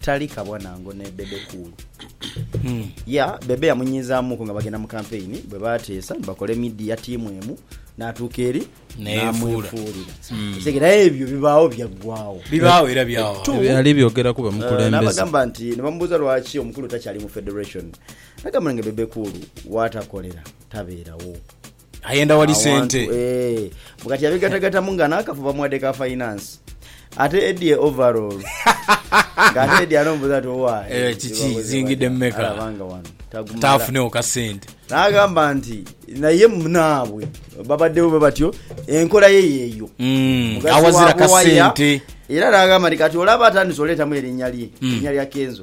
Tali kabona ngo ne Bebe Cool. Ya, Bebe yamunyiizaamuuku nga bagenda mu kampeyini bwe baateesa ni bakola emidiya tiimu emu n'atuuka eri N'eyefuula. n'amwefuulira. Okitegeera? Aye ebyo bibaagho byaggwaawo. Bibaagho era byagho. Tu- Byali byogeraku Eh, bamukulembeze. n'abagamba nti ne bamubuuza lwaki omukulu takyali mu federation n'agamba nga Bebe Cool w'atakolera tabeerawo. Ayenda wali sente. Awantu eeh. Mbu kati abigatagatamu nga nakafu bamuwadde ka finance. Ate Eddy e overall. Nga ate Eddy anomubuza nti owa e. Eeh kiki Byebakoze zingidde batya. mumeka. Alaba nga wano tagumala. Taafunewo ka sente. Nagamba nti naye munaabwe babaddewo bwe batyo enkola ye yeeyo. Umm Mugazi awazira waabo ka waya. sente. Era nagamba nti kati olaba atandise oleetamu erinnya lye. Erinnya lya Kenzo.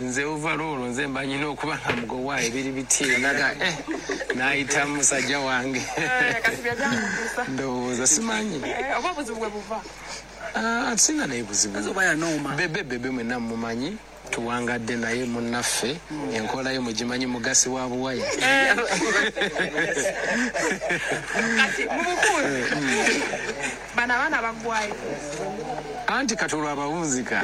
Nze uvalo olwo nze mba nyina okuba nga mugowaa ebiri bityina ga eh naita musaja wange ndowooza simanyi aah atusinga naye buzibu bebe bebe mwena mumumanyi tuwangadde naye munaffe enkola yo mugimanyi mugasi wa buwaya eeh. Bano abaana bagwayo. Anti kati olwo abawunzika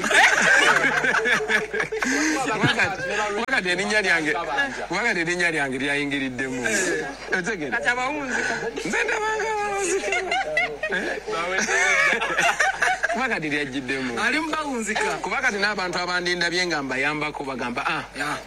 kuba kati erinnya lyange kuba kati erinnya lyange lyayingiriddemu otegera Kati abawunzika. Nze ndabanga abawunzika kuba kati lyajjiddemu. Ali mu bawunzika. Kuba kati n'abantu abandindabye nga mbayambako bagamba ah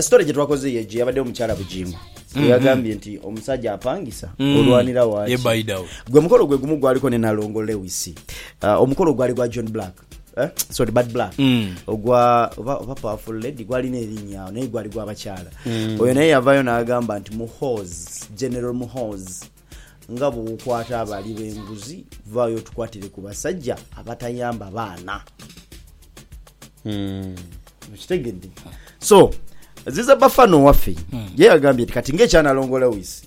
Sitole gye twakoze ye gye yabaddewo mukyala Bugingo mm-hmm. gwe yagambye nti omusajja apangisa mm. olwanira waaki gwe mukolo gwe gumu gwaliko ne nalongo Lewis uh, omukolo gwali gwa John Black eh? sorry bad black mm. ogwa oba, oba powerful lady gwalina erinnya naye gwali gwabakyala mm. oyo naye yavayo n'agamba nti muhoz general muhoz Nga bwokwata abali benguzi vaayo otukwatire ku basajja abatayamba baana. Okitegedde? So ziza Bafana owaffe ye yagambye nti kati ng'ekya Nalongo Lewis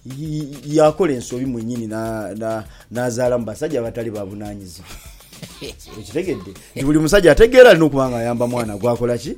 y- y- yakola ensobi mwennyini na- na- n'azaala mu basajja abatali babunaanyizibwa. Okitegedde? Nti buli musajja ategeera alina okuba ng'ayamba mwana gwakola ki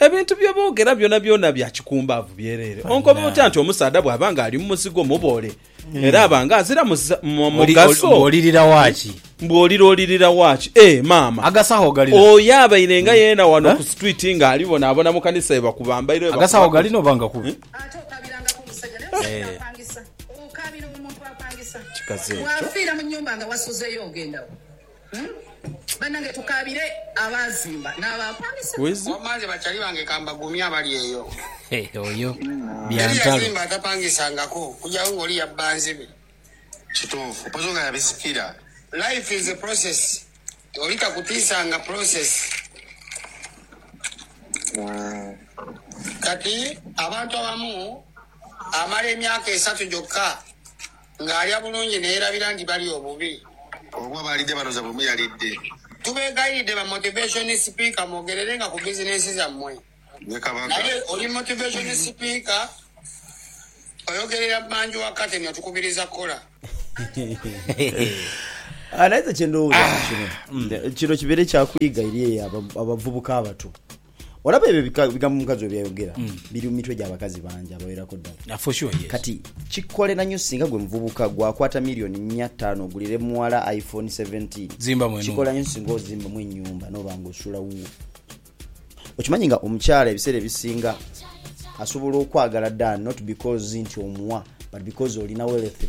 Ebintu bye boogera byonabyona bya kikumbaavu byereere. Onkoba otya nti omusaadha bw'aba ng'ali mu muzigo muboole, era aba ng'azira mugaso? Mbu olirira wa ki? Mbu olira olirira wa ki? Ee, maama. Agasawo gali na. Oyo abaire nga yeena wano ku situwiiti ng'ali bonaabona mu kanisa ye bakuba mbairo ye bakuba. Agasawo gali na oba nga kubi? Ate okaabirangako omusajja naye ofiire nga apangisa. Okaabira omuntu apangisa. Kikazi ekyo. Bw'afiira mu nnyumba nga wasuzeeyo ogenda wa? Banange tukaabire abaazimba n'abaapangisa. Wambanze bakyali bange ka mbagumye abali eyo. Teri yazimba atapangisangako okugyawo nga oli yabba nzibe. Kituufu mpozi nga yabisikira. Life is a process oli takutiisa nga process. Kati abantu abamu amala emyaka esatu gyokka. Ng'alya bulungi n'eyerabira nti balya obubi. Oba baalidde bano zaabwe muyalidde. Tubeegayiride ba Motivation Speaker mwogererenga ku bizinensi zammwe. Ne Kabaka. Naye oli Motivation Speaker oyogerera manju wa curtain otukubiriza kukola. Naye nze kye ndowooza ku kino nti kino kibeere kya kuyiga eri abavubuka abato. olaba ebyo bika- bigambo omukazi we byayogera biri mu mitwe gy'abakazi bangi abawerako ddala Ah, for sure, yes. kati kikolera nnyo singa gwe muvubuka gwakwata miliyoni nnya ttaano ogulire muwala iphone 17 Zimbamu enhumba. kikolera nnyo singa ozimbamu ennyumba noba nga osula wuwo okimanyi nga omukyala ebiseera ebisinga asobola okwagala dan not because nti omuwa but because olina wealthy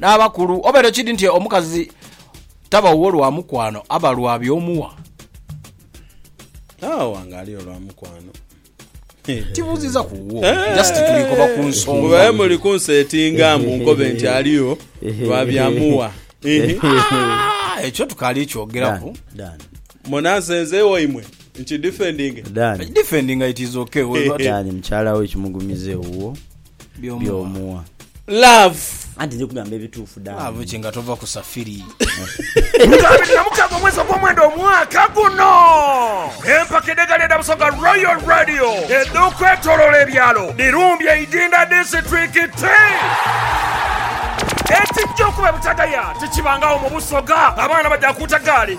N'abakulu, obeere kidi nti omukazi taba wuwo lwa mukwano, aba lwa by'omuwa. Agho wangaali olwa mukwano. Tibuuziza ku wuwo, just tuli koba ku nsonga. Mbu babe muli kunsetinga mbu nkobe nti aliyo lwa bya muwa. Ah, ekyo tukaali kyogeraku. Dan. Mona nze nzeewo imwe nkidifendinge? Dan. Defendinga it is okay. We've got- Dan, mukyala wo ekimugumiza ewuwo. byomuwa. Love. Anti ndi kugamba ebituufu damu. Love ki nga tova ku safiri. Lutalo abiri na mukaaga omwezi ogw'omwenda omwaka guno. Empaka edh'egaali edha Busoga Royal Radio edh'okwetoloola ebyalo dhirumbye Idinda disiturikiti. Ekijja okuba ebutagaya tikibangagho mu Busoga, abaana baja kuuta gaali.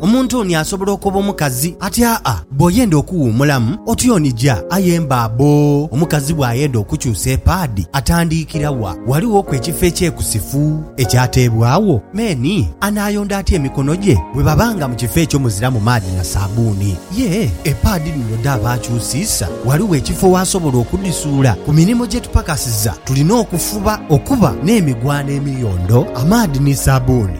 Omuntu oni asobola okoba omukazi ati, Aa, bw'oyenda okuwuumulamu, otyonija. Aye mba bbo, omukazi bw'ayenda okukyusa epaadi, atandiikira wa? Ghalighoku ekifo ekyekusifu ekyateebwagho? Me ni, Anaayonda atya emikono gye bwe baba nga mu kifo ekyo muziramu maadhi na saabbuuni? Yee, epaadi dhino dhaaba akyusiisa, ghaligho ekifo w'asobola okudhisuula. Ku mirimo gye tupakasiza tulina okufuba okuba n'emigwano emiyondo, amaadhi ni saabbuuni.